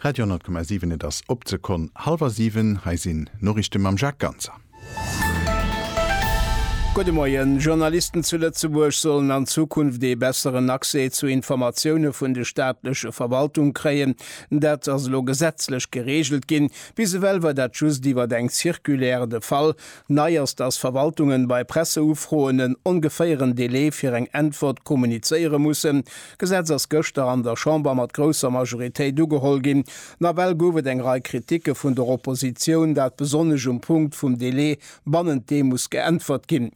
Radio 10,7 Et ass op d'Sekonn hallwer siwen. Hei sinn d'Noriichte mam Jacques Ganser. Gudde Moien. Journalisten zu Lëtzebuerg sollen an Zukunft ee besseren Accès zu Informatioune vun de staatleche Verwaltung kréien. Dat ass elo gesetzlech gereegelt ginn. Bis ewell war dat just iwwer eng Circulaire de Fall. Nei ass, datt Verwaltungen bei Presseufroen en ongeféieren Delai fir eng Äntwert kommunizéiere mussen. D'Gesetz ass gëschter an der Chamber mat grousser Majoritéit ugeholl ginn. Nawell gouf et eng Rei Kritike vun der Oppositioun, dat besonnesch um Punkt vum Delai, bannent deem muss geäntwert ginn.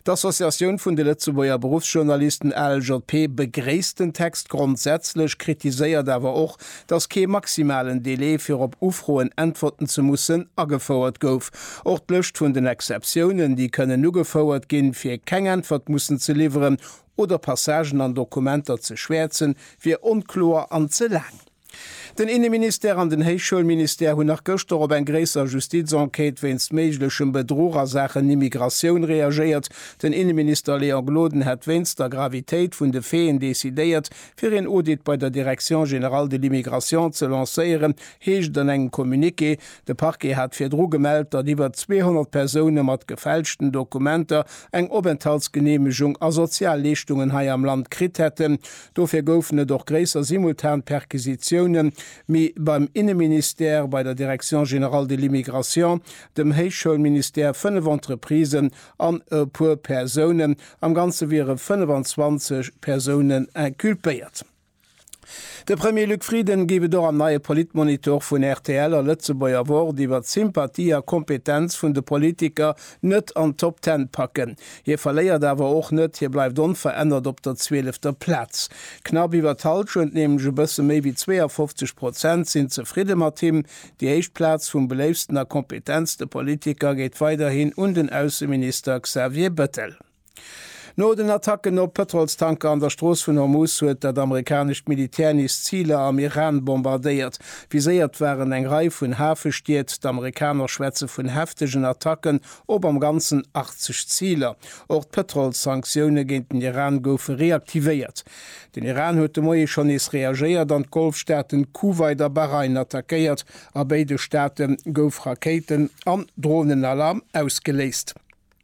D'Associatioun vun de Lëtzebuerger Beruffsjournalisten, ALJP, begréisst den Text grondsätzlech, kritiséiert awer och, datt kee maximalen Delai, fir op Ufroen äntwerten ze mussen, agefouert gouf. Och d'Lëscht vun den Exceptiounen, déi kënnen ugefouert ginn, fir keng Äntwert mussen ze liwweren, oder Passagen an Dokumenter ze schwäerzen, wier onkloer an ze laang. Den Inneministère an den Héichschoulministère hunn nach gëschter op eng gréisser Justizenquête wéinst méiglechem Bedruch a Saachen Immigratioun reagéiert. Den Inneminister Léon Gloden hätt wéinst der Gravitéit vun de Faiten decidéiert, fir een Audit bei der Direction générale de l'immigration ze lancéieren, heescht et an engem Communiqué. De Parquet hat virdru gemellt, datt iwwer 200 Persoune mat gefälschten Dokumenter eng Openthaltsgeneemegung a Sozialleeschtungen hei am Land kritt hätten. Dofir goufen et och gréisser simultan Perquisitioune mi beim Inneministère, bei der Direction générale de l'immigration, dem Héichschoulministère, fënnef Entreprisen an e puer Persounen. Am Ganze wiere 25 Persounen inculpéiert. De Premier Luc Frieden géif et och am neie Politmonitor vun rtl a Lëtzebuerger Wort iwwert d'Sympathie a Kompetenz vun de Politiker net an d'Top Ten packen. Hie verléiert awer och net, hie bleift onverännert op der zwielefter Plaz. Knapp iwwer d'Hallschent, nämlech e bësse méi wéi 52 Prozent, sinn zefridde mat him. Déi éischt Plaz vum beléiftsten a kompetentste Politiker geet weiderhin un den Ausseminister Xavier Bettel. No den Attacken op Pëtrolstanker an der Strooss vun Hormuz huet dat amerikanescht Militär nees Ziler am Iran bombardéiert. Viséiert waren eng Rei vun Hafestied. D'Amerikaner schwätze vun heftegen Attacken op am Ganzen 80 Ziler. Och d'Pëtrolssanktioune géint den Iran goufe reaktivéiert. Den Iran huet de Moie schonn nees reagéiert an d'Golfstaaten Kuwait a Bahrain attackéiert. A béide Staate gouf Rakéiten an Dronenalarm ausgeléist.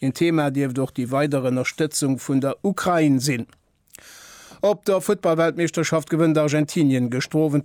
Een Thema dierft och déi weider Ënnerstëtzung vun der Ukrain sinn. Op der Futtballweltmeeschterschaft gewënnt Argentinien gëschter Owend